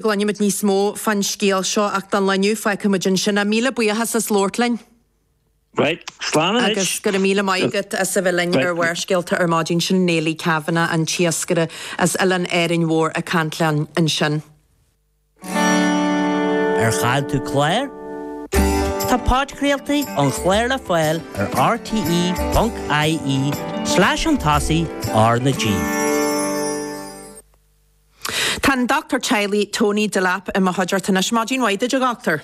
Cluinfimid níos mó fán scéal seo ach dá lainneadh, feicfimid ansin. Míle buíochas as labhairt linn. Right, slán anois. Agus go raibh míle maith agat as a bheith linn ar Bharrscéalta ar maidin. Sin Néilidh Kavanagh, an t-iascaire as oileán Árainn Mhór ag caint linn ansin. Ar chaill tú clár? Tá podchraoltaí ón chlár le fáil ar rte.ie slash chun tosaigh R na G. Tá an Doctúir Teaghlaigh Tony Delap i mo chuideachta anois. Maidin mhaith duit, a Dhoctúir.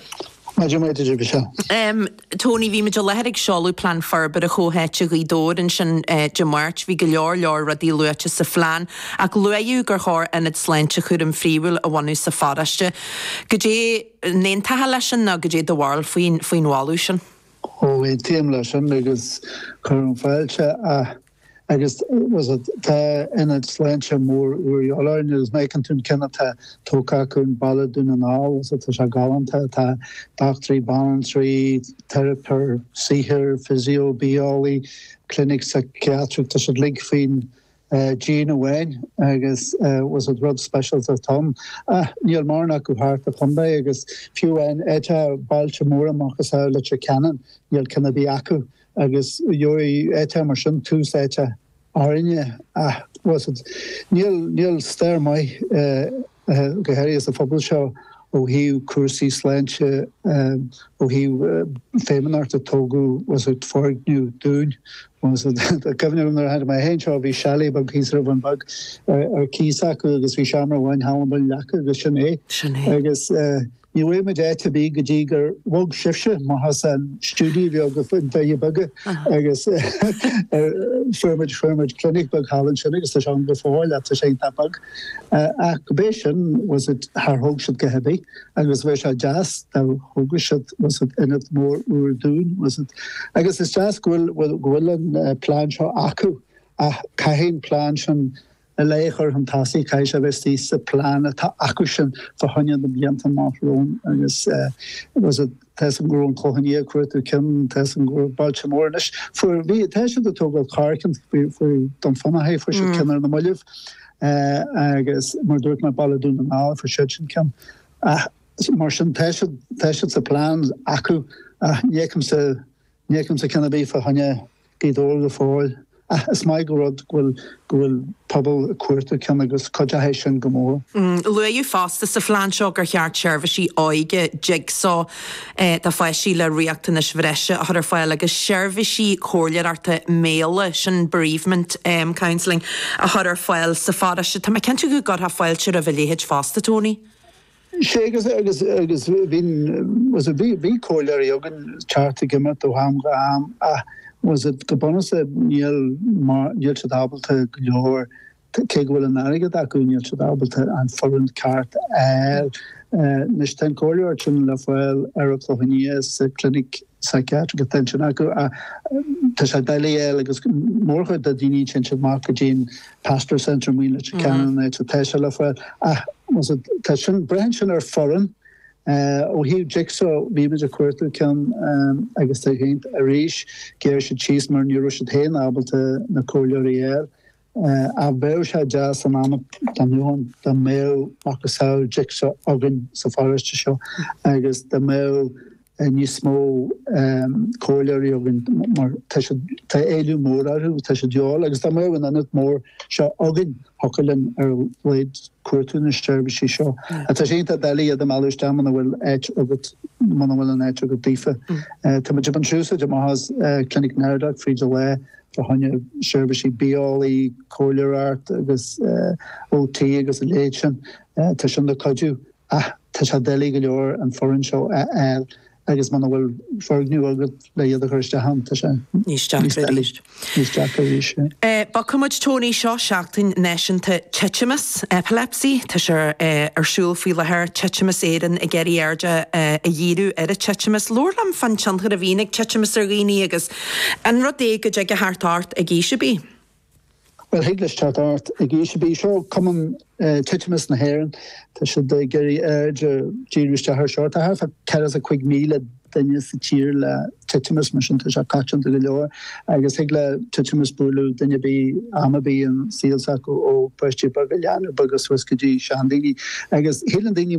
Maidin mhaith duit, a Mhichelle. Tony, bhí muid i láthair ag seoladh Plean Forbartha Comhtháite Ghaoth Dobhair ansin Dé Máirt. Bhí go leor leor rudaí luaite sa phlean ach luaíodh gur chóir Ionad Sláinte Cúraim Phríomhúil a bhunú sa pharóiste. Goidé an aontófá leis sin nó goidé do bharúil faoin mholadh sin? Ó, aontaím leis sin agus cuirim fáilte Agus tá ionad sláinte mór úr a dhíobháil orainn, agus má fheiceann tú an ceann atá tógtha acu i mBaile Dhún na nGall, tá sé galánta, tá dochtúirí, banaltraí, teiripeoir saothair, physio, bia-eolaí, clinic saiceatrach, tá siad uilig faoin díon amháin agus rud speisialta atá ann. Níl mórán acu thart fán chontae agus fiú amháin áit atá bailte móra macasamhail Leitir Ceanainn, níl ceann ar bith acu. agus gheobhaidh áiteacha mar sin tús áite orainne ach bhfuil a fhios agat. Níl stair maith go háirithe sa phobal seo ó thaobh cúrsaí sláinte, ó thaobh feidhmeannacht ag tógáil, bhfuil a fhios agat, foirgneamh dúinn, bhfuil a fhios agat. Cuimhním nuair a tháinig mé fhéin anseo bhí chalet beag thíos ar an Bhun Bheag ar cíos acu agus bhí seomra amháin thall i mBun an Leaca agus sin é. Sin é. Agus. Ní bhfuair muid áit ar bith go dtí gur bhog sibhse amach as an stiúideo bheag i nDoire Beaga, agus fuair muid, fuair muid clinic beag thall ansin agus tá sé ann go fóill ach tá sé iontach beag. Ach go b'é sin, bhfuil a fhios agat, char thóg siad a dhath ar bith agus bheadh sé deas dá dtógfadh siad, bhfuil a fhios agat, ionad mór úr dúinn, bhfuil a fhios agat. Agus is deas go bhfuil, go bhfuil an plean seo acu ach caithfidh an plean sin a bheith curtha chun tosaigh, caithfidh sé a bheith thuas sa phlean atá acusan fá choinne na blianta amach romhainn agus bhfuil a fhios agat, tá a fhios agam go raibh an Clochán Liath ag cuartú cionn, tá a fhios agam gur bailte móra anois fuair bhí tá siad ag tógáil corrchionn faoi faoi Dún Fionnachaidh fuair siad cionn ar na moillibh agus mar dúirt mé Baile Dún na nGall fuair siad sin cionn ach mar sin tá siad tá siad sa phlean acu ach ní fheicimse ní fheicimse cionn ar bith fá choinne Bhí doiligh go fóill. Ach is maith an rud go bhfuil go bhfuil pobal ag cuartú cionn agus cuideochaidh sé sin go mór. Luaidheadh fosta sa phlean seo gur cheart seirbhísí óige Jigsaw do pháistí le riachtanais bhreise a chur ar fáil agus seirbhísí comhairleoireachta méala, sin bereavement counselling, a chur ar fáil sa pharóiste. Tá mé cinnte go gcuirfeá fáilte roimh a leithéid fosta, Tony. Sea, agus agus agus bhíonn, tá's agat, bhí bhí comhairleoirí againn, teacht agus imeacht ó am go ham ach, tá's agat, go bunúsach níl mar, níl siad ábalta go leor, cé go bhfuil an t-airgead acu, níl siad ábalta an foireann ceart a fháil. Anois tá an comhairleoir sin le fáil ar an Chlochán Liath sa chlinic. Psychiatric attention acu ach tá sé doiligh a fháil agus mórchuid de dhaoine téann siad isteach go dtí'n Pastoral Centre i Leitir Ceanainn tá sé le fáil ach tá sin braitheann sin ar foireann ó thaobh Jigsaw bhímid ag cuartú ceann agus tá's agat arís ghearr siad síos mar ní raibh siad féin ábalta na comhairleoirí a fháil Ach bheadh sé deas an am a d'ainneoin dá mbeadh macasamhail Jigsaw againn sa pharóiste seo agus dá mbeadh níos mó comhairleoirí againn mar tá siad, tá éileamh mór orthu, tá siad de dhíobháil agus dá mbeadh an ionad mór seo againn thiocfadh linn ar a laghad cuartú na seirbhísí seo. Tá sé iontach doiligh iad a mhealladh isteach muna bhfuil áit agat, muna bhfuil an áit agat daofa. Tá muid ag baint úsáid anois as Clinic Naoimh Pádraig fríd an lá fá choinne, seirbhísí bia-eolaí, comhairleoireacht agus OT agus a leithéid sin. Tá sin ag cuidiú ach tá sé doiligh go leor an foireann seo a fháil agus muna bhfuil foirgneamh agat le iad a chur isteach ann, tá sé níos deacra arís. Níos deacra arís, yeah. Bogfaidh muid Tony seo Seachtain Náisiúnta Titimeas, Epilepsy. Tá sé ar siúl faoi láthair, Titimeas Éireann ag iarraidh aird a dhíriú ar an titimeas. Labhair liom fán tionchar a bhíonn ag titimeas ar dhaoine agus An rud é go dtig leis teacht ort ag aois ar bith? Bhuel, thig leis teacht ort ag aois ar bith. Seo Cumann Titimeas na hÉireann. Tá siad ag iarraidh aird a dhíriú isteach ar seo. Tá thart fá ceathracha cúig míle duine sa tír le titimeas, mar sin tá sé coitianta go leor agus thig le titimeas bualadh duine ar bith am ar bith sa saol s'acu, ó pháistí beaga, leanaí beaga suas go dtí seandaoine. Agus síleann daoine